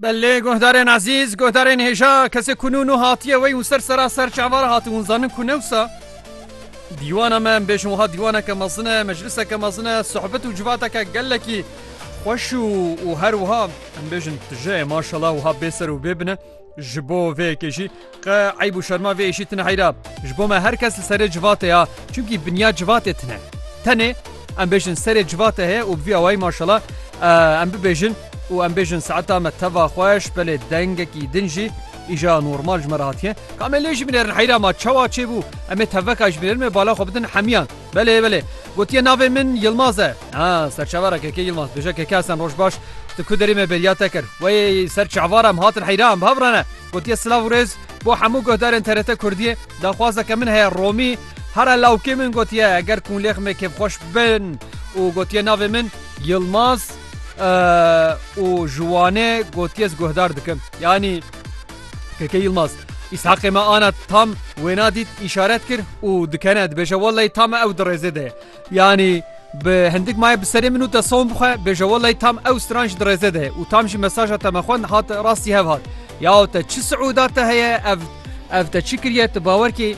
Belê guhdarên ezîz guhdarên hêja kesê ku nû nû hatiye wey û ser sera ser çavar hati hûn zanin ku newsa dîwana me em bêjin wiha dîwaneke mezin e mecliseke mezin e sohbet û civateke gelekî xweş û û her wiha em bêjin tije maşela wiha bêser û bêbine Ji bo vê yekê jî qe eyb û şerma vê êşî tine heyra. Ji bo me her kes li serê civatê ya çimkî binya civatê tine. Tenê em bêjin serê civatê heye û bi vî awayî maşala em bibêjin û em bêjin saeta me teva xweş belê dengekî din jî îja normal ji me re hatiye. Ka me lê ji binêrin heyra ma çawa çêbû em ê teveka ji binêrin me bala xwe bidin hemiyan. Belê belê. Gotiye navê min Yilmaz e. Ha serçavara kekê Yilmaz. Bêje keke esen roj baş. Tu ku derê me bêriya te kir. Weyê ser çavara em hatin heyran biha birane. Gotiye silav û rêz bo hemû guhdarên TRT Kurdiyê. Daxwazeke min heye Romî hera lawkê min gotiye eger kûnlêx me kêfxweş bin û gotiye navê min Yilmaz e û ji Wanê gotiye ez guhdar dikim. Yanî Keke Yilmaz, Îshaqê me ana tam wêna dît îşaret kir û dikene dibêje wellay tam ew di rêzê de ye. Yanî bi hindik maye bi serê min û te som bixwe bêje wellay tam ew stran ji di rêzê de ye û tam jî mesaja te me xwend hat rastî hev hat. Yaw te çi siûda te heye ev ev te çi kiriye tu bawer kî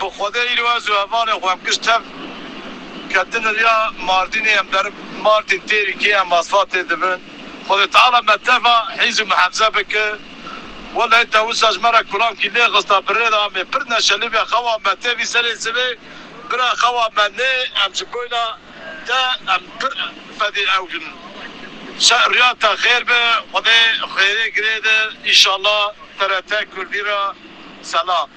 Bi xwedê îro ez û hevalên xwe em kişt tev, ketin riya Mardînê, em berib Mardîn têrî kê em asfa tê dibin. Xwedê Teala me teva hîz û mihefze bike. Wellehî te wisa ji me re kulankî lê xista bi rê de amê pir neşelî be xewa me tevî serê sivê bira xewa me nê em ji boyna te em pir fedê ew bin. Şer riya te xêr be xwedê xêrê girê de inşallah TRT Kurdî re selam.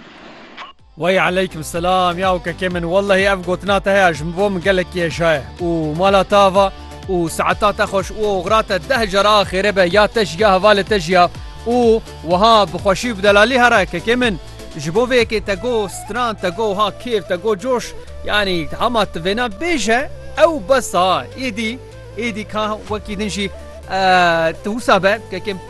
Wey aleykum selam ya ukekê min wellehî ev gotina te heye ji bo min gelekî hêja ye û mala te ava û seeta te xweş û oxira te deh car a xêrê be ya te jî ya hevalê te jî ya û wiha bi xweşî û bi delalî here kekê min ji bo vê yekê te got stran te got wiha kêf te got coş yanî hema tu vêna bêje ew bes a êdî êdî ka wekî din jî tu wisa be kekê min.